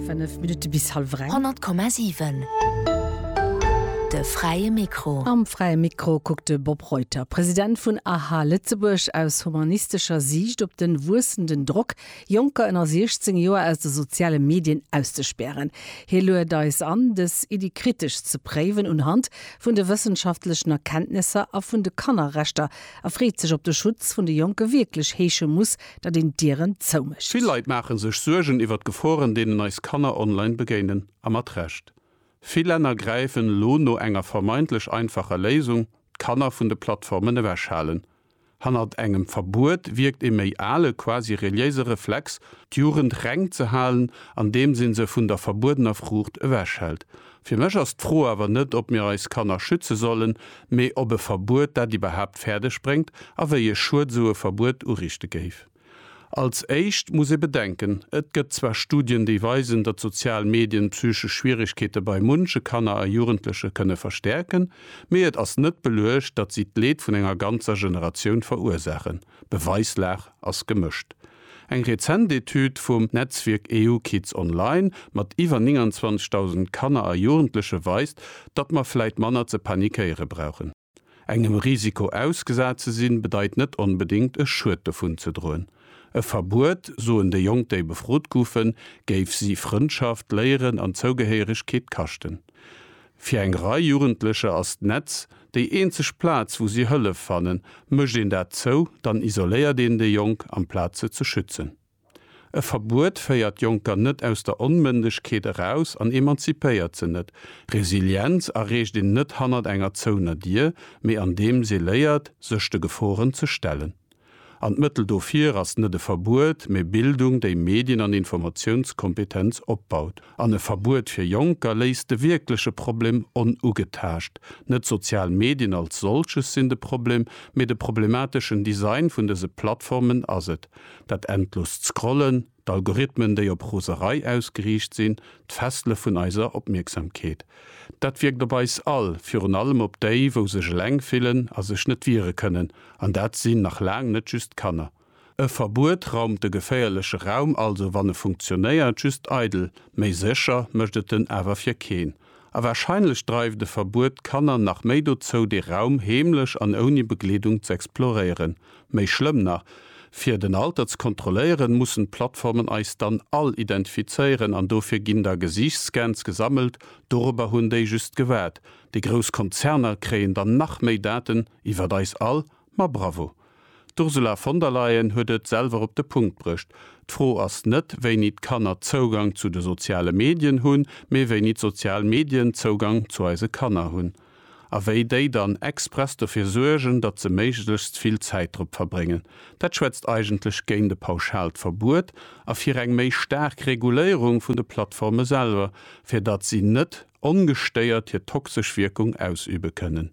5 Minutte bis hallef eng. 100,7 De fräie Mikro. Am fräie Mikro kuckt de Bob Reuter, President vun aha Lëtzebuerg, aus humanistescher Siicht op de wuessenden Drock, Jonker ënner 16 Joer aus de soziale Medien auszespären. Hie luet eis an, dës Iddi kritesch ze préiwen unhand vun de wëssenschaftlechen Erkenntnesser a vun de Kannerrechter a freet sech, ob de Schutz vun de Jonke wierklech heesche muss, datt een d'Dieren zou mécht. Vill Leit maache sech Suergen iwwer d'Geforen, deenen eis Kanner online begéinen. A mat Recht. Vill Länner gräifen elo no enger vermeintlech einfacher Léisung, d'Kanner vun de Plattformen ewechhalen. Hannert engem Verbuet wierkt e méi ale, quasi reliéise Reflex, d'Jugend reng ze halen, andeems ee se vun der verbuedener Fruucht ewechhält. Fir mech ass d'Fro awer net, ob mir eis Kanner schütze sollen, mee ob e Verbuet dat iwwerhaapt fäerdeg bréngt a wéi e Schued esou e Verbuet urichte géif. Als éischt muss ee bedenken, et gëtt zwar Studien, déi weisen, datt sozial Medien psychesch Schwieregkeete bei munche Kanner a Jugendleche kënne verstäerken, mee et ass net beluecht, datt si d'Leed vun enger ganzer Generatioun verursaachen. D'Beweislag ass gemëscht. Eng rezent Etüd vum Netzwierk EU Kids Online mat iwwer 29.000 Kanner a Jugendleche weist, datt mer vläit manner ze panikéiere brauchen. Engem Risiko ausgesat ze sinn, bedeit net onbedéngt e Schued dovun ze droen. E Verbuet, soen déi Jonk déi befrot goufen, géif si Frëndschaft, Léieren an Zougehéieregkeet kaschten. Fir eng Rei Jugendlecher ass d'Netz déi eenzeg Plaz wou si Hëllef fannen. Mécht een dat zou, dann isoléiert een déi Jonk amplaz se ze schützen. E Verbuet féiert d'Jonker net aus der Onmëndegkeet eraus an emanzipéiert se net. Resilienz erreecht een net hannert enger zouener Dier, mee andeems ee léiert, sech de Geforen ze stellen. An d'Mëttel dofir ass net e Verbuet, mee Bildung, déi Medien an Informatiounskompetenz opbaut. An e Verbuet fir Jonker léisst de wierkleche Problem onugetaascht. Net d'sozial Medien als solches sinn de Problem, mee de problemateschen Design vun dëse Plattformen ass et, dat endlost Scrollen, D'Algorithmen, déi op Roserei ausgeriicht sinn, d'Fessele vun eiser Opmierksamkeet. Dat wierkt op eis all, virun allem op déi, wou sech eleng fillen a sech net wiere kënnen, an dat sinn nach laang net just d'Kanner. E Verbuet raumt de geféierleche Raum also, wann e funktionéiert, just eidel. Méi sécher mécht et en awer fir keen. A warscheinlech dreift e Verbuet d'Kanner nach méi dozou, dee Raum heemlech an ouni Begleedung z'exploréieren. Méi schlëmm nach, Fir den Alter ze kontrolléieren, mussen d'Plattformen eis dann all identifizéieren an dofir ginn da Gesiichtsscans gesammelt. Dorobber hunn déi just gewaart. Déi grouss Konzerner kréien dann nach méi Daten iwwert eis all Ma bravo! D'Ursula von der Leyen huet et selwer op de Punkt brëcht. D'Fro ass net, wéini d'Kanner Zougang zu de soziale Medien hunn, mee wéini d'sozial Medien Zougang zu eise Kanner hunn. A wéi déi dann express dofir suergen, datt se méiglechst vill Zäit drop verbréngen. Dat schwätzt eigentlech géint e pauschaalt Verbuet a fir eng méi staark Reguléierung vun de Plattforme selwer, fir datt si net ongestéiert hir toxesch Wierkung ausübe kënnen.